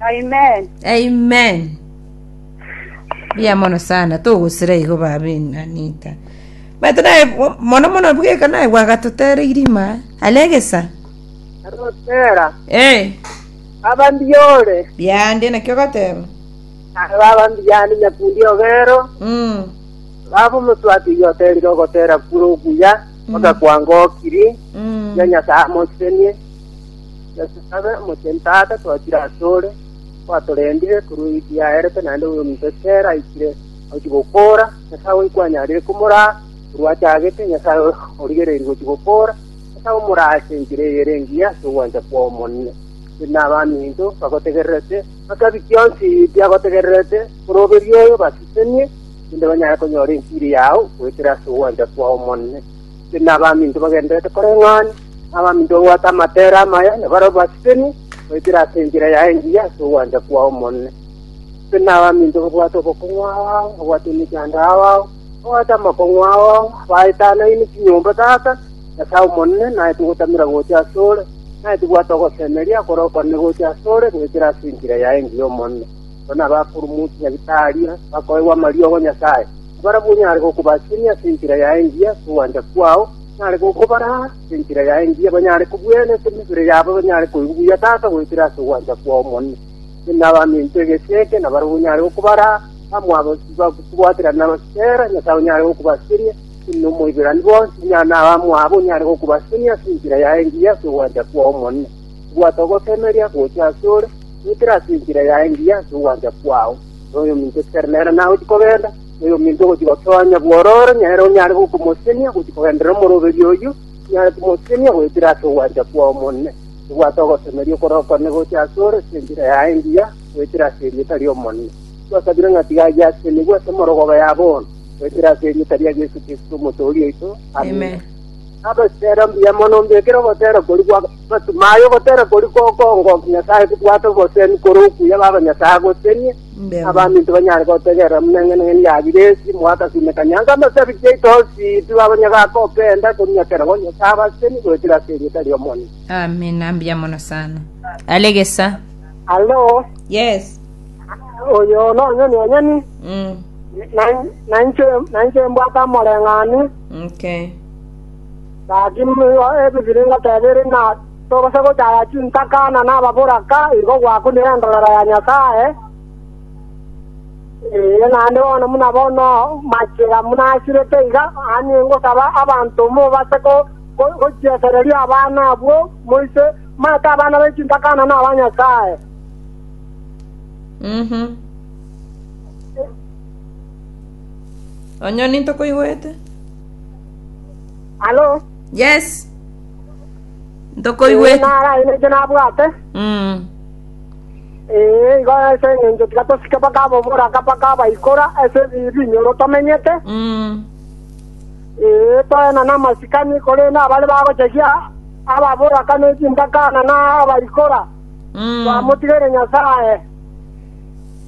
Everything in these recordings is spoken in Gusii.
Amen. Amen. Bia mono sana togosira igo babe nanita. But naye mo- mono mono bweka naye gwagatotere irima alegesa. Arotera. Eh, Baba mbiore. biande nakio goteba. Naye baba mbiyani nyakundi ogero. Mm. Baba omoswati igoterire ogotera kure okuya. Mm. Mpaka kwangokiri. Mm. Ya nyasaye amosenie. Yeso abe omochenu, Tata, twachire asore, kwatorendire korwa egi yaerete naende oyo ominto ekero aikire agochia gokora, Nyasae oyo kwanyarire komoraa korwa achagete, Nyasae oyo origereiri gochia gokora, Nyasae omoraa ase enchera eye ere engiya ase ogwancha kwao monene. Ere nabaminto bagotegererete, bakabi kionsi biagotegererete, oroberie oyo basesenie, erinde banyare konyora enchiri yao goetera ase ogwancha kwao monene. Tindi nabaminto bagendererete koreng'ana, na abaminto babwate amatere amaya, na barabwo basibeni goetera ase enchera yaye engiya ase ogwancha kwao Omonene. Tindi nabaminto babwate obokong'u ao ao, babwate emechando ao ao, babwate amakong'u ao ao, abaetanaine chinyomba tata, Nyasae Omonene, naete ogotamera gocha ase ore, naete bwate ogosemeria kore okwane gocha ase ore goetera ase enchera yaye engiya Omonene. Abwo nabakuru munsi ya Gitaria, bakoegwa amariogo 'a Nyasae. Nabarabwo nyare gokobasiria ase enchera yaye engiya ase ogwancha kwao, nyare gokobaraa ase enchera yaye engiya banyare kobuyaina ase emebere yabo, banyare koigwa buya Tata goetera ase ogwancha kwao omonyene. Inche nabame intwe egesi eke, nabarabwo nyare gokobaraa amo abasibwa kobwatera nabasibera, Nyasae onyare gokobasiria, inche nomoiberani bonsi, inyare naba amo abo, nyare gokobasiria ase enchera yaye engiya ase ogwancha kwao omonyene. Bwata ogosemeria gocha asore, goetera ase enchera yaye engiya ase ogwancha kwao. Noyominto otigare nere naye gochia kogenda, noyominto ogochia gotonya bwororo nere onyare gokomosenia gochia kogenderera omoroberio oyio, onyare komosenia goetera ase ogwancha kwao Omonene. Bwata ogosemeria okorokwane gocha asore ase enchera yaye engiya, goetera ase erieta ri'Omonene. Twasabire ng'a tiga ayio asenigwe ase emorogoba ya bono, goetera ase erieta ria Yeso Kristo, Omotoori oito. Amina. Naboseera mbuya mono ombekere ogoseera koria gwa amasimo aya, ogoseera koria kokongokia Nyasae kobwate obosemi korwa okuya b'abanyasae agosenie, na abaminto banyare gotegerera buna eng'ana eye yabire ense moagasimeka nyango amo as'ebichie yaito onsi, intwe abanyagaaka obenda konyakera bo Nyasae abaseni goetera as'erieta ri'Omonene. Amina, mbuya mono sana. Are gesa. Alo, Yes. oyo nonye nonyeni, Mm. na- nainche nainche mbwate amoreng'anio, nke. Gaki nigo ebibiring'o tebiri, na togose gochaya chintaka na nababoraka, igo gwakunire engenchero ya Nyasae, ee, naende bono buna bono machira munasirete iga, aye ngosaba abanto mobase gochietereria abana abwo, moise maete abana be chintaka na naba Nyasae. Mhm. Onye ninto koigwete. Alo, Yes. ee, Ntokoigwete. nara aye naiche nabwate, Mm. ee, igo ase eng'encho tiga tosike mpaka aboboraka mpaka abaikora ase ebi- ebinyoro tomenyete, Mm. ee, toena namasikani korende abare bagochegia ababoraka nechimbakana na abaikora, Mm. twamotigere Nyasaye.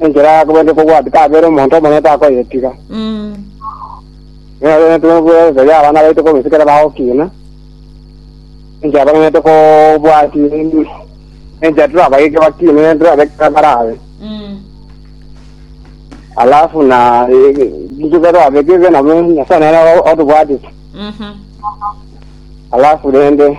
Enchera ya kobua ndikobwati kabere omonto omonene takoyetiga. Nero nitube nkoborekeria abana baito korwa inse kera bagokina. Enchera bagenete kobwati enchera torabageke bakine nere torabeke kera barabe. Alafu na intwe kera torabeke nabo Nyasaye nere otobwatete. Alafu rende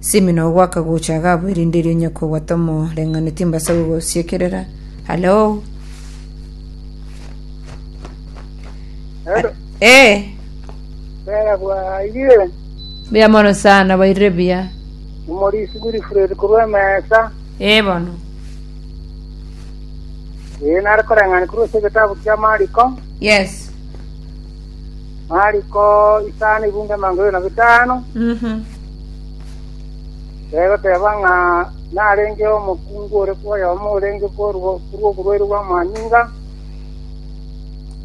Simino ogo akagocha agabua erinde erio onye kobwata omoreng'anio timbasa gogosiekerera. Hallo? Hello. Ee, Bera bwairire buya mono sana, bairire buya. omorisi Wilfred korwa emesa. Ee bono. Ee nare koreng'ana korwa ase egetabu kia Mariko. Yes. Mariko isano ibungo emango ere na botano, egoteba ng'a narenge omokungu ore kwoyomo orenge korwa oborwaire bw'amanyinga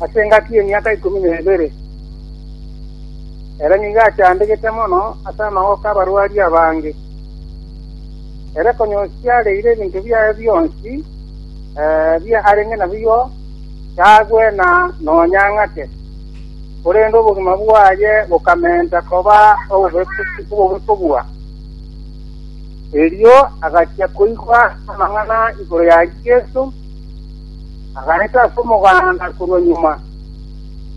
ase engaki y'emiaka ikomi na ebere. Ere nigo achandegete mono ase amagoko 'abarwari abange. Ere konya osiareire ebinto biaye bionsi bia arenge nabiyo, tagwe na nonya ng'ake, korende obogima bwaye bokamenta koba obobekobua. Erio agachia koigwa amang'ana igoro ya Yeso, agaeta ase omoganda korwa nyuma,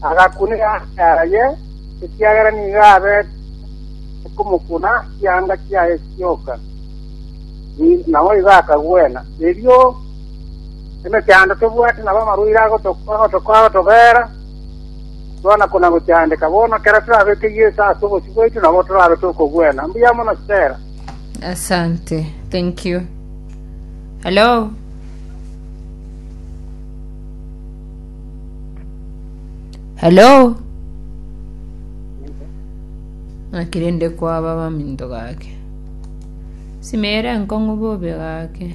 agakuna eanga yaye, ekiagera nigo abete komokuna chianga chiaye chioka, naboigo akagwena. Erio Emechando tobwati nabo amarwaire agotobeera, twona kona‐gochandeka. Bono ekero torabeke Yeso ase obosio bwaito nabo torabe tokogwena. Mbuya mono Stella. Asante. Thank you. Hello. Hello. Akirinde kwaba baminto gake. Simere enkong'u bobe gake.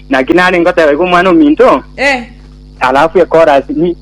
Naki nare ngoteba iga Omwana-o-minto, Ee. alafu ekorasi, ni,